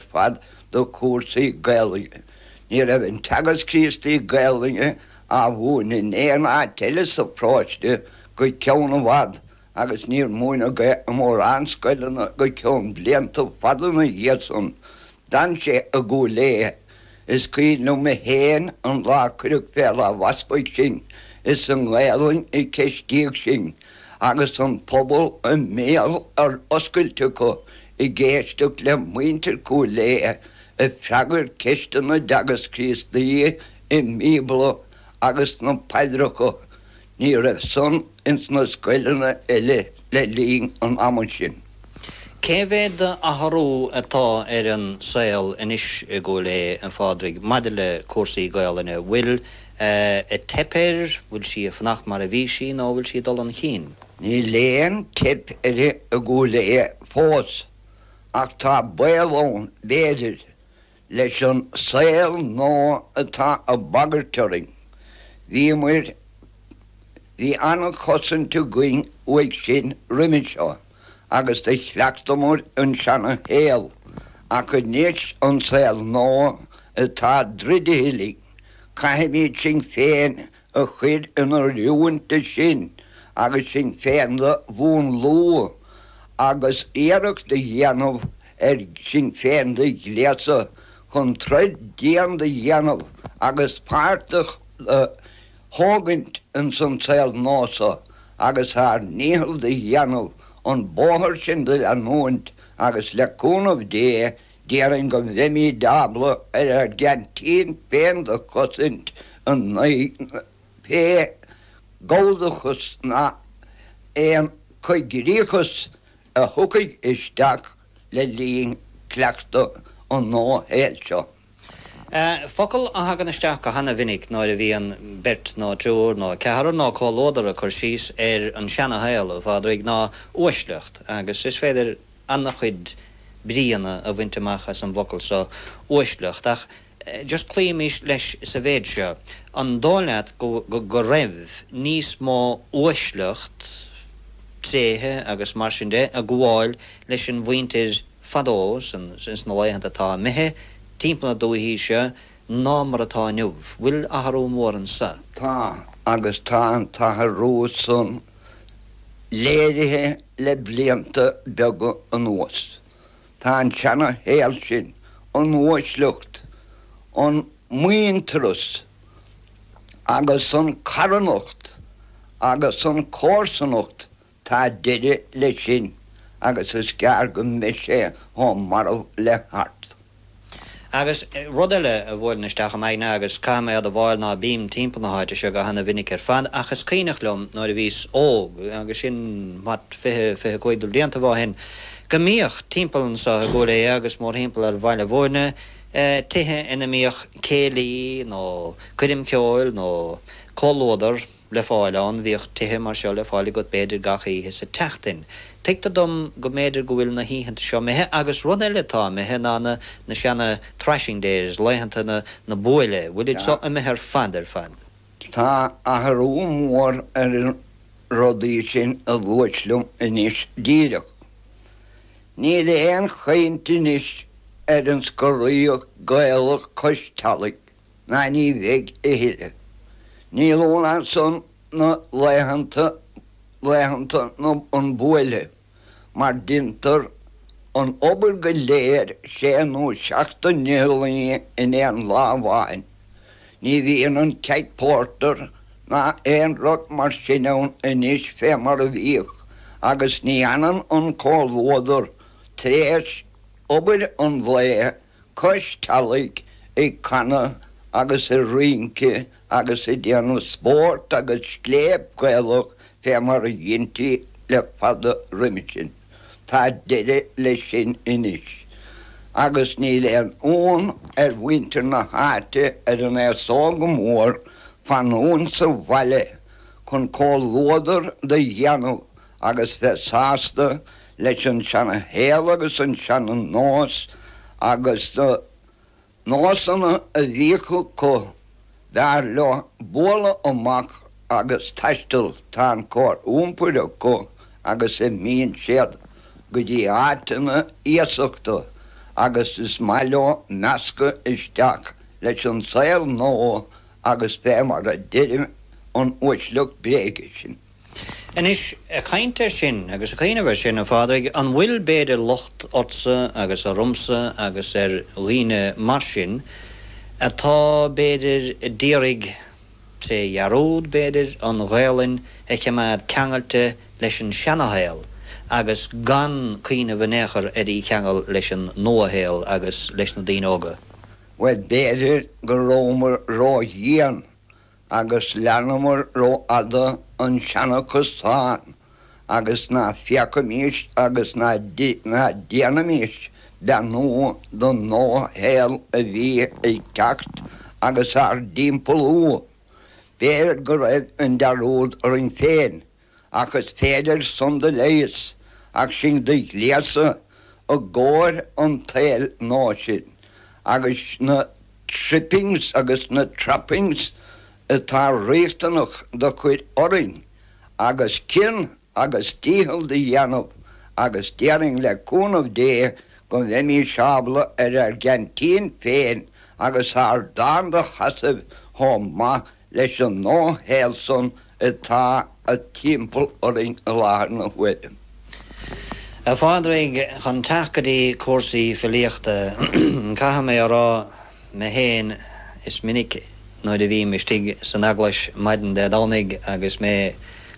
fad do chúrsaí Gaelainne. Ní raibh an Teagasc Críostaí Gaelainne á mhúineadh in aon áit eile sa pharóiste go ceann i bhfad agus níor múineadh é i mórán scoileanna go ceann blianta fada ina dhiaidh san. D'fhan sé i gCúil Aodha. Is cuimhin liom é féin an lá a cuireadh fé láimh Easpaig sinn. Is i nGaelainn a ceistíodh sinn agus an pobal a mbéal ar oscailt acu. ag éisteacht le muintir Chúil Aodha ag freagairt ceisteanna Teagasc Críostaí an Bíobla agus sna paidreacha, ní raibh san ins na scoileanna eile le linn an ama sin. Cé mhéad d'athrú atá ar an saol anois i gCúil Aodha, a Phádraig, maidir le cúrsaí Gaelainne? Bhfuil ag teip air, bhfuil sí ag fanacht mar a bhí sí nó bhfuil sí ag dul 'un chinn? Níl aon teip air i gCúil Aodha fós, ach tá baol ann, b'fhéidir, leis an saol nua atá á bagairt orainn. Bhíomar, bhí an-chosaint againn uaidh sin roimhe seo, agus do chleachtamar an seana-shaol, ach anois an saol nua atá druidte linn, caithfimid sinn féin a chur in oiriúint dó san agus sinn féin do mhúnlú agus iarracht do dhéanamh ar sinn féin do ghléasadh chun troid dian do dhéanamh agus páirt a thógaint ins an saol nua so agus ár ndícheall do dhéanamh an bóthar sin do leanúint agus le cúnamh Dé Déarfainn go mbeimid ábalta ar ár gceaintín féin do chosaint in aghaidh pé galldachas nó aon coigríochas a thiocfaidh isteach le linn cleachtadh an nua-shaoil seo. Focal a thagann isteach go hana-mhinic nuair a bhíonn beirt nó triúr nó ceathrar nó comhluadar ag cur síos ar an seana-shaol, a Phádraig, ná 'uaisleacht' agus is féidir, ana-chuid bríonna a bhaint amach as an bhfocal so 'uaisleacht', ach just cloímís leis sa mhéid seo, an dóigh leat go raibh níos mó uaisleacht, tréithe agus mar sin de, ag gabháil leis an mhuintir fadó, ins na laethanta atá imithe, timpeall na dúichí seo, ná mar atá inniu. Bhfuil athrú mór anso? Tá, agus tá an t-athrú san léirithe le blianta beaga anuas. Tá an seana-shaol sin, an uaisleacht, an muintearas agus an carthanacht agus an comharsanacht Tá deireadh leis sin agus is gearr go mbeidh sé chomh marbh le hArt. Agus rud eile a bhuaileann isteach i m'aigne agus caithim é a admháil ná bím timpeall na háite seo go hana-mhinic ar fad ach is cuimhneach liom nuair a bhíos óg, agus sin, what, fiche, fiche cúig de bhliantaibh ó shin, go mbíodh timpeall anso i gCúil Aodha agus mórthimpeall ar Bhaile Mhúirne tithe ina mbíodh céilí nó coirm cheoil nó comhluadar. le fáil ann. Bhíodh tithe mar seo le fáil agat b'fhéidir gach oíche sa tseachtain. Tuigtear dom go mb'fhéidir go bhfuil na hoícheanta seo imithe agus rud eile atá imithe ná na na seana thrashing days, laethanta na na buaile, bhfuil iad seo imithe ar fad ar fad? Tá athrú mór ar na rudaí sin a luais liom anois díreach. Níl aon chaint anois ar an scoraíocht Ghaelach cois teallaigh. ná ní bheidh a thuilleadh. Níl ann ansan na laethanta, laethanta an buaile, mar deintear an obair go léir sé nó seacht de laethe in aon lá amháin. Ní bhíonn an keg pórtair ná aon rud mar sin ann anois fé mar a bhíodh agus ní fhanann an comhluadar tar éis obair an lae cois teallaigh ag canadh agus ag rince agus ag déanamh spóirt agus scléip Ghaelach fé mar a dheintí le fada roimhe sin. Tá deire le sin anois, agus níl aon fhonn ar mhuintir na háite ar an aos óg go mór fanúint sa bhaile chun comhluadar do dhéanamh agus bheith sásta leis an seana-shaol agus an seana-nós agus na nósanna a bhíodh acu, b'fhearr leo bualadh amach agus taisteal, tá an chóir iompair acu agus imíonn siad go dtí áiteanna iasachta agus is maith leo meascadh isteach leis an saol nua agus bheith mar a deireadh an uaisleacht bréige sin. Anois, ag caint ar sin agus ag cuimhneamh ar sin, a Phádraig, an bhfuil b'fhéidir locht ortsa agus ormsa agus ar dhaoine mar sin atá, b'fhéidir, d'iarraidh, tré dhearúd, b'fhéidir, an Ghaelainn a chimeád ceangailte leis an seana-shaol agus gan cuimhneamh in aon chor ar í cheangal leis an nua-shaol agus leis na daoine óga? Bhuel, b'fhéidir go rabhamar ródhian Agus leanamar ró-fhada an seanfhocal san agus ná féacaimís agus ná déanaimís beannú don nua-shaol a bhí ag teacht agus ár dtimpeallú. B'fhéidir go raibh an dearúd orainn féin ach is féidir san do leigheas ach sinn do ghléasadh i gcóir an tsaeil nua sin agus na trippings agus na trappings atá riachtanach do chuir orainn agus cion agus dícheall do dhéanamh agus déarfainn le cúnamh Dé go mbeimís ábalta ar ár gceaintín féin agus ár dtáin do sheasamh chomh maith leis an nua-shaol san atá timpeall orainn i láthair na huaire. A Phádraig, chun teacht go dtí cúrsaí filíochta, caithfidh mé a rá mé féin, is minic nuair a bhím istigh san eaglais maidin Dé Domhnaigh agus mé,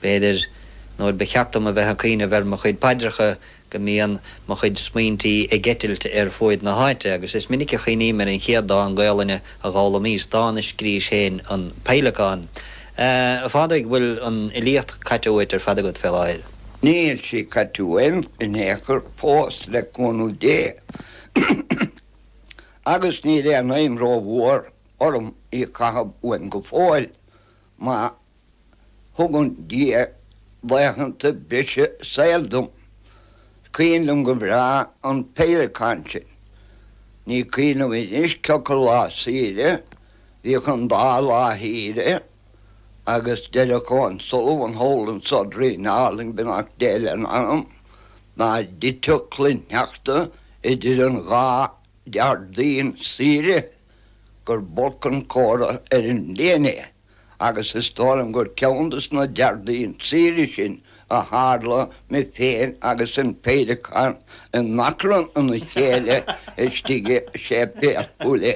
b'fhéidir, nuair ba cheart dom a bheith ag cuimhneamh ar mo chuid paidreacha, go mbíonn mo chuid smaointí ag eitilt ar fuaid na háite, agus is minic a chuimhním ar an chéad dán Gaolainne a d'fhoghlaimíos, dán a scrís féin, An Peidhleacán. A Phádraig, bhfuil an fhilíocht caite uait ar fad agat fé láthair? Níl sí caite uaim in aon chor fós, le cúnamh Dé, agus níl aon aidhm rómhór orm í a chaitheamh uaim go fóill, má Thugann Dia laethanta breise saoil dom. 'S cuimhin liom go bhreá an peidhleacán sin. Ní cuimhin liom anois cé acu lá saoire, bhíodh an dá lá shaoire agus deireadh Seán Sullivan thall insa Doirín Álainn, beannacht Dé lena anam, dá dtiteadh cloichshneachta idir an dhá Déardaoin saoire gur b'olc an comhartha ar an bhliain é. agus is dóigh liom gur ceann des na Déardaoin saoire sin a tharla mé féin agus an peidhleacán in achrann ina chéile istigh i Séipéal Chúil Aodha.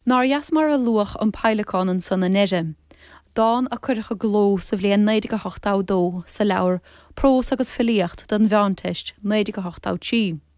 Nár dheas mar a luadh an Peidhleacán ansan i ndeireadh, dán a cuireadh i gcló sa bhliain 1982 sa leabhar Prós agus Filíocht don Mheánteist, 1983.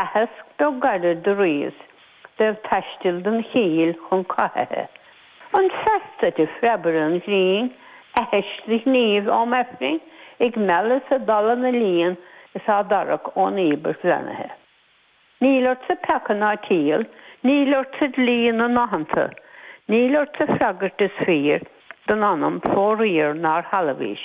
Aitheasc do gairid do ríos beag taistil don chill chun cathaithe. An seasta de phreabaire an ghrinn, aithis do ghníomh am Aifrinn ag mealladh 's ag dalladh na líon is á dtarrac ón íobairt bheannaithe. Níl ortsa peaca ná ciall, níl ortsa dlí na n-aitheanta, níl ortsa freagairt is fíor don anam fóraoir nár shealbhaís.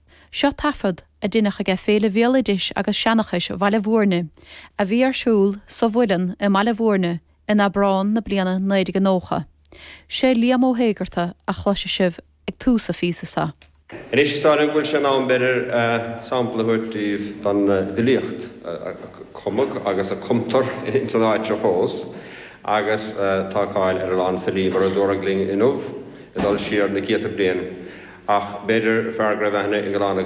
Seo taifead a deineadh aige Féile Bhéaloidis agus Seanachais Bhaile Mhúirne a bhí ar siúl sa Mhuileann i mBaile Mhúirne in Abrán na bliana 1990. Sé Liam Ó hÉigeartaigh a chloisfidh sibh ag tús an phíosa seo. Anois is dóigh liom go bhfuil sé in am b'fhéidir sampla a thabhairt daoibh den bhfilíocht a cumadh agus a cumtar ins an áit seo fós agus tá cáil ar a lán filí mar a dúradh linn inniu. ag dul siar na céadta bliain, ach b'fhéidir, fear go raibh aithne ag a lán againn.